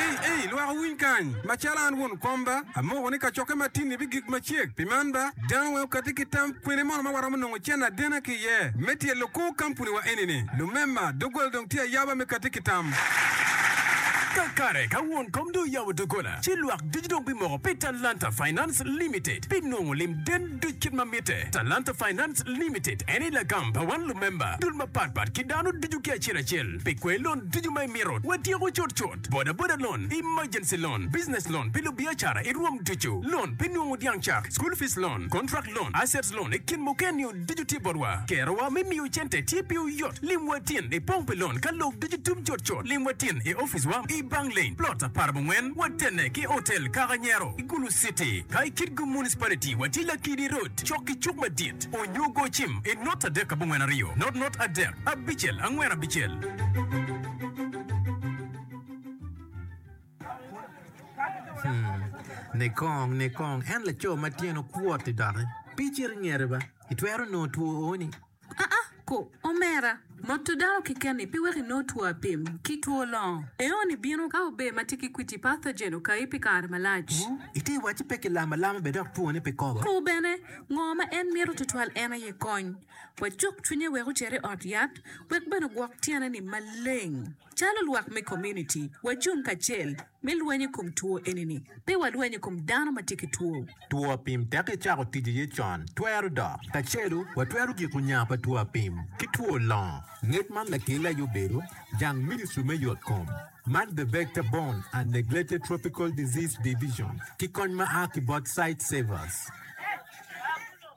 Ei, ei, lwak owiny kany! Macalo an won komba, amoko ni kacokke matinni bigik macek. Pi man ba, dano weng okatti ki tam, kwene mono ma waromo nongo cen adena ki iye me tyelo kor kampuniwa eni-ni? Lumema, doggola dong tye ayaba me katti ki tam. Kakare, ka won kom dong oyabo doggola, ci lwak ducu dong bimoko pi Talanta Finance Limited pi nongo lim gen duc kit ma mitte. Talanta Finance Limited en aye lagam pa wan lumemba, dul mapatpat ki dano ducu ki acel acel. Pi kwer lon ducu ma imito, watyeko cutcut. Bodaboda loan, emergency loan, business loan pi lubiacara i rwom ducu, loan pi nongo dyang cak, school fees loan, contract loan, assets loan i kin muken-nio ducu tye botwa. Kerowa me miyo cente tye piwu yot. Lim watin i pong pi loan ka lok ducu tum cutcut. Lim watin i opic wa i Bang Lane, Plot aparabongwen, watene ki Hotel Kaka Nyero i Gulu City. Ka i Kitgum Municipality, watye Lakidi Road cok ki cuk madit. Onyo go cim i not adek abongwen aryo, not not adek. Abicel, angwen abicel. Hmm, nikong, nikong, en laco ma tyene okwot-ti doki. Pe icit ingete ba, itwero nongo two o-ni. Aa, ko, omera, moto dano keken-ni pe weko inong two apim ki two longo. Eo-ni bino ka ober ma tye ki kwiti pathogen okayi pi kare malac. Wu, ite wacci pe ki lamo alama be dok two-ni pe kobo. Ko bene, ngo ma en mito twatwal en aye kony. Wacuk cwinye wek ocer i ot yat wek bene ogwok tyene ni maleng. Calo lwak me komuniti, wacung kacel me lweny i kom two eni-ni. Pe walweny i kom dano ma tye ki two. Two apim teki cako tic iye con twero dok. Kacelu, watwero giko nya pa two apim ki two longo. Ngec man lakelle aye obedo jang ministri me yot kom man The Vector Borne and Neglected Tropical Disease Division ki kony ma a ki bot Sightsavers.